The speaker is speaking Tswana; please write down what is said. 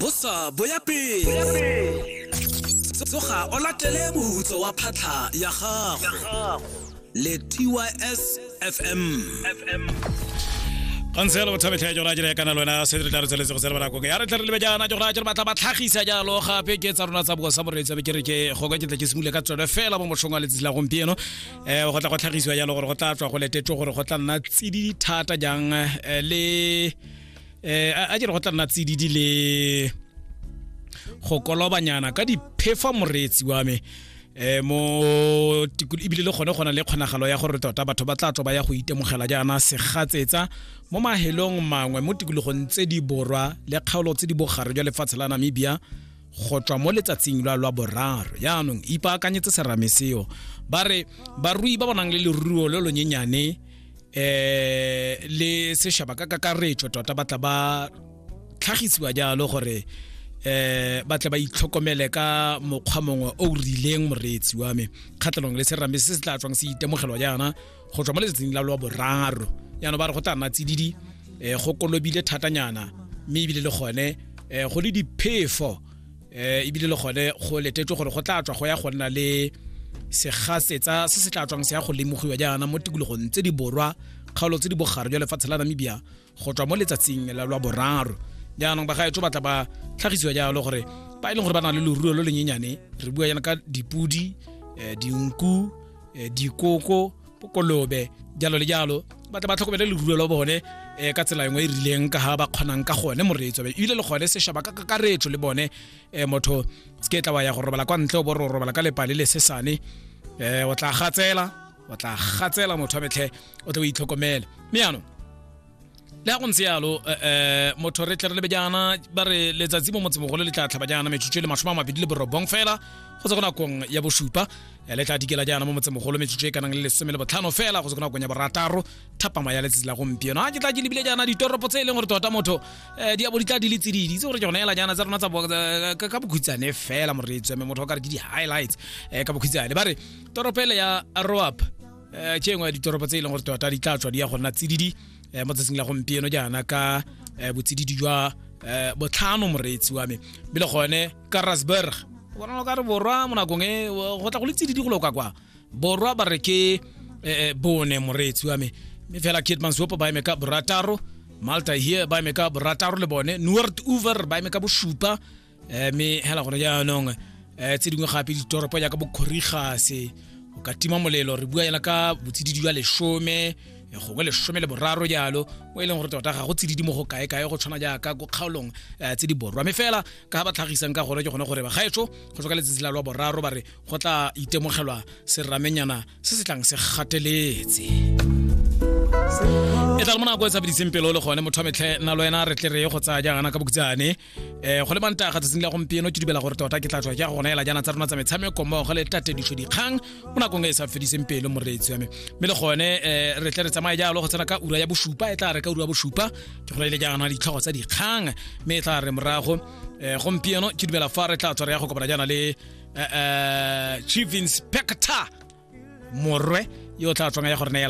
bosa bo ya pele tsoga o latele moputso wa phatlha ya gago le tys fm gantse yalo bothabe tlhae jora jere kana lwena se re tla re tsweletse go tsela banakong ya re tla re lebe jaana jora jere batla ba tlhagisa jalo gape ke tsa rona tsa bosa moreetsi be ke re ke go ka ke tla ke simule ka tsone fela mo motlhong wa letsatsi la gompieno um go tla go tlhagisiwa jalo gore go tla tswa go letetso gore go tla nna tsididi thata jang eh, le eh a jere go tla nna tsididi le go kolobanyana ka diphefa moreetsi wa me eh mo ebile le gone gona le kgonagalo ya gore tota batho ba tla tlo ba ya go itemogela jaana segatsetsa mo mahelong mangwe mo tikologong tse di borwa le kgaolo tse di bogare jwa lefatshe la namibia go tswa mo letsatsing lwa lwa boraro yaanong ipaakanyetse serame seo ba re barui ba bonang le leruo lo lonyenyane eh le seshaba ka kakaretso tota ba tla ba tlhagisiwa jalo gore eh ba tla ba itlhokomele ka mokgwa mongwe o rileng moreetsi wa me kgatlhanong le serame se se tla tswang se itemogelwa jaana go tswa mo letsatsing la lowa boraro jaanong ba re go tla nna tsididi um go kolobile thatanyana mme ebile le gone um go le diphefo um ebile le gone go letetswe gore go tla tswa go ya go nna le segasetsa se se tla tswang se ya go lemogiwa jaana mo tikologong tse di borwa kgaolo tse di bogare jwa lefatshe la namibia go tswa mo letsatsing la lwa boraro jaanong bagaetso ba tla ba tlhagisiwa jalo gore ba e leng gore ba na le loruo lo lenyenyane re bua yana ka dipodi um dinku um dikoko kolobe jalo le jalo ba tla ba tlhokomele leruo la bone um ka tsela engwe e rileng ka ga ba kgonang ka gone moreetso ebile le gone sešaba ka kakaretso le bone um motho se ke tla wa ya go robala kwa ntle o bo re robala ka lepale le sesane um o tla gatsela o tla gatsela motho wa metlhe o tle o itlhokomele mme yanong le ya go ntse yalo um eh, eh, motho re tle re lebe jaana ba re letsatsi mo motsemogolo le tla tlhaba jaana metsotso e le masome a mabedi le borobong fela go tse go nakong ya bosupa eh, le tla dikela jaana mo motsemogolo metsotso e kanang le lesome le botlhano fela go tse go nakong ya borataro thapama ya letsatsi la gompieno a ke tla ke lebile jaana ditoropo tse e leng gore tota motho um di abo di tla di le tsididi tse gore ke gona ela jaana tsa rona ka bokhutshane fela moreetseme motho o ka re ke di-highlights um ka bokhutshane ba re toropo ele ya roap um ke engwe ya ditoropo tse e leng gore tota di tla tswa di ya go nna tsididi um mo tsatsing la gompieno jaana ka um botsididi jwa um botlhano moreetsi wa me be le gone ka rasburg bonalo ka re borwa mo nakong e go tla go le tsididi go loka kwa borwa ba re ke um bone moreetsi wa me mme fela kitmansopo ba eme ka borataro malta here ba eme ka borataro le bone noord over ba eme ka bosupa eh, mme hela gone jaanong um eh, tse dingwe gape ditoropo jaaka bokgorigase o ka tima molelo re bua yana ka botsididi jwa lesome eh, gongwe lesome le boraro jalo mo e leng gore tota ga go tsididi mo go kae-kae go tshwana jaaka ko kgaolong um tse di borwa mme fela ka ba tlhagisang ka gone ke gone gore bagaetso go tswa ka letsatsi la lwa boraro ba re go tla itemogelwa seramenyana se se tlang se gateletse e tla le mo nako e tshabediseng pelo le gone motho wa metlhe nna le wena re tle re ye go tsaya jaana ka bokutsane eh go le manta ga tsatsing la gompieno ke dibela gore tota ke tla tswa ke go neela jana tsa rona tsa metshameko mmogo le tate ditlho dikgang mo nakong e sa fediseng pelo moreetsi wa me mme le gone um re tle re tsamaye jalo go tsena ka ura ya bosupa e tla re ka ura ya bosupa ke go neile jaana ditlhogo tsa dikgang mme e tla re morago um gompieno ke dumela fa re tla tswa re ya go kopana jaana le um chief inspector morwe yo o tla tswang ya gore neela